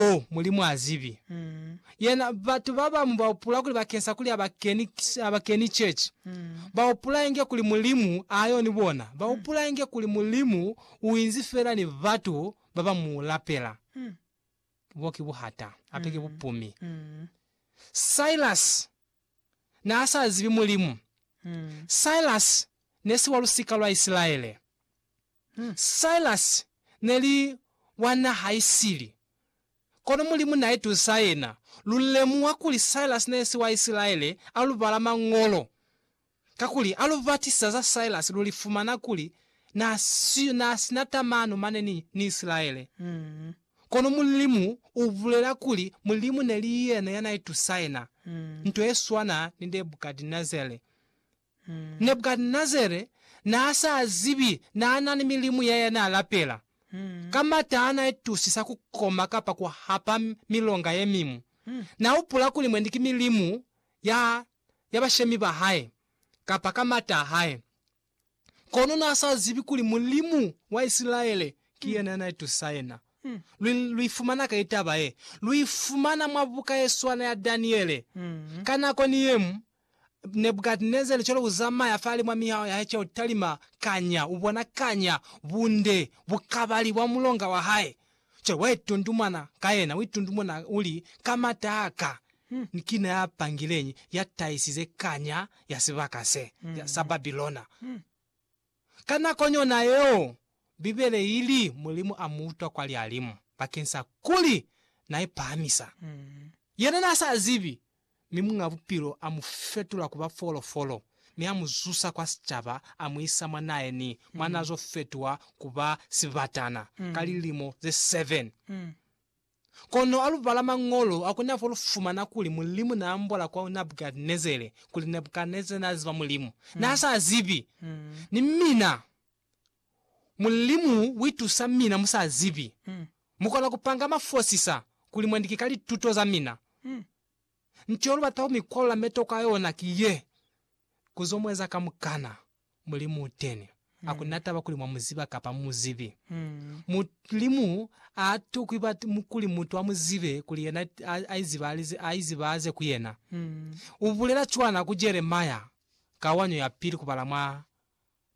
Oh, Mulimu a zibi. Yena, batu babamu ba hupula kuli bakeng sa kuli ha ba keni, ha ba keni chechi, ba hupula inge kuli Mulimu a yo ni bona. Ba hupula inge kuli Mulimu u inzi fela ni batu ba ba Mu lapela. Bo ki buhata, hape ki bupumi. Silas n'a sa zibi Mulimu. Silas ne si wa lusika lwa Isilaele. Silas neli wa naha isili, kono Mulimu naitusa yena. Lulemuha kuli Silas nesi wa Isilaele alubala Mañolo, kakuli alubatisa za Silas lulifumana kuli naasina tamano mane ni Isilaele. Kono Mulimu ubulela kuli Mulimu neli yena yanaitusa yena, nto yeswana ni Nebukadinezare. Nebukadnezare naa sa zibi naa na ni milimu ya ya naa lapela. Ka mata a na itusisa ku koma kapa ku hapa milonga ye miñwi, na hupula kuli mwendi ki milimu ya ya bashemi ba hae, kapa ka mata a hae. Kono naa sa zibi kuli Mulimu wa Isilaele ki yena ya na itusisa yena. Lu, lu ifumana kai taba ye? Lu ifumana mwa buka ye swana ya Daniele. Ka nako ni yeñwi, Nebukadnezare cwale u zamaya fale mwa mihaho ya hae ca ku talima, kanya u bona kanya bunde bukabali bwa mulonga wa hae. Cwale wa itundumana ka yena, u itundumuna u li, Ka m'ata a ka, ni kina ya pangileñi ya tahisize kanya ya sibaka se sa Babilona? Ka nako yona yeo, Bibele i li Mulimu a mu utwa kwa lihalimu bakeng sa kuli n'a ipahamisa. Yena n'a sa zibi, mi Muñ'a Bupilo a mu fetula ku ba folofolo mi a mu zusa kwa sicaba, a mu isa mwa naeni mwa n'a zo fetuha ku ba sibatana ka lilimo ze 7. Kono alubala Mañolo a kona fo lufumana kuli Mulimu na ambola kwa Nabukadnezere kuli Nabukadnezere na ziba Mulimu na sa zibi, ni mina Mulimu uitusa mina mu sa zibi. Mu kona kupanga mafosisa kuli mwandike ka lituto za mina. Nto yo lubata ku mi kwalula metoko a yona ki ye, ku zo mueza kamukana. Mulimu u teni. Ha ku na taba kuli mwa mu ziba kapa mu mu zibi. Mulimu ha a tokwi kuli mutu a mu zibe kuli yena a izibahaze ku yena. U bulela cwana ku Jeremia ka wanyo ya pili kubala mwa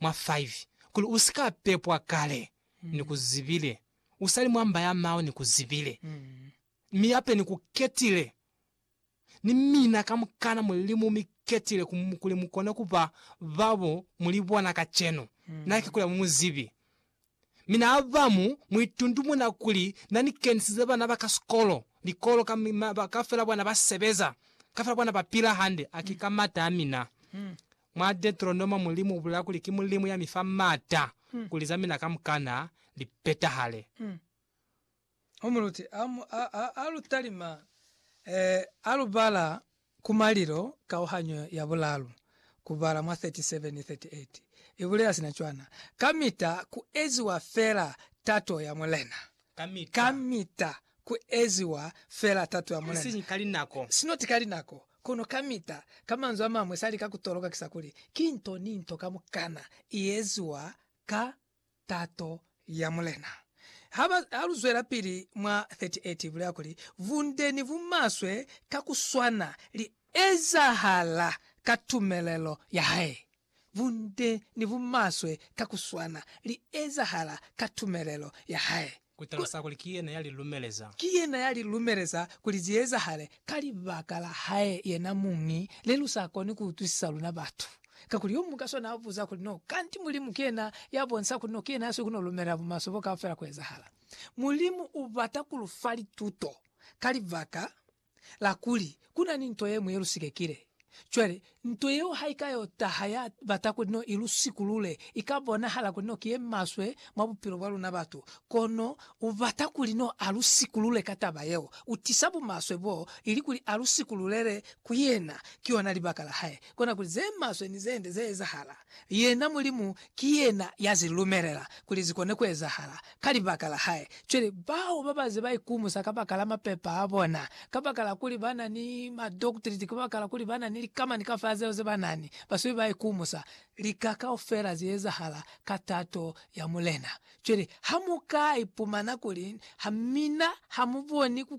5, kuli, U si ka pepwa kale, ni ku zibile, u sa li mwa mba ya mao, ni ku zibile, mi yape ni ku ketile. Ni mina kamukana muli mu mi ketile kuli mu kone ku ba ba bo muli bona kacenu, na ki kuli ha mu mu zibi. Mi na abamu mu itundumuna kuli na ni kenisize bana ba ka sikolo, likolo, ka, ka fela bona ba sebeza, ka fela bona ba pila hande. A ki ka mata a mina. Mwa Deteronoma Mulimu ubulela kuli ki Mulimu ya mi fa mata kuli za mina kamukana li petahale. Umuluti a lu talima, a lu bala ku malilo kauhanyo ya bulalu ku bala mwa 37 ni 38 i bulela sina cwana, Kamita ku eziwa fela tato ya Mulena. Kamita ku eziwa fela tato ya Mulena. Isiñi ka linako. Sinoti ka linako, kono kamita. Ka manzwi a mañwi, sa lika ku toloka ki sa kuli, ki nto ni nto kamukana i eziwa ka tato ya Mulena. Ha ba, ha lu zwelapili mwa 38, ibulela kuli, Bunde ni bumaswe ka ku swana li ezahala ka tumelelo ya hae. Bunde ni bumaswe ka ku swana li ezahala ka tumelelo ya hae. Ku talusa kuli ki yena ya li lumeleza. Ki yena ya li lumeleza kuli zi ezahale. Ka libaka la hae yena muñi, ne lu sa koni ku utwisisa luna batu. Kakuli yo muñwi ka sona a buza kuli, No kanti Mulimu ki yena ya bonisa kuli no ki yena ya sikuno lumelela bumaswe bo kaufela ku ezahala? Mulimu u bata ku lu fa lituto ka libaka la kuli ku na ni nto ye ñwi ye lu sikekile. Cwale, nto yeo ha i ka yo taha ya bata kuli no i lu sikulule, i ka bonahala kuli no ki ye maswe mwa bupilo bwa luna batu. Kono u bata kuli no a lu sikulule ka taba yeo. U tisa bumaswe bo, ili kuli a lu sikululele ku yena. Ki yona libaka la hae. Kona kuli ze maswe ni ze nde ze ezahala. Yena Mulimu ki yena ya zi lumelela kuli zi kone ku ezahala ka libaka la hae. Cwale, bao ba ba ze ba ikumusa kabakala mapepa a bona, kabakala kuli ba na ni madoktiriti, kabakala kuli ba na ni likamani kaufela zeo ze ba na ni, ba sube ba ikumusa. Lika kaufela zi ezahala ka tato ya Mulena. Cwale, ha mu ka ipumana kuli, Ha mina, ha mu boni ku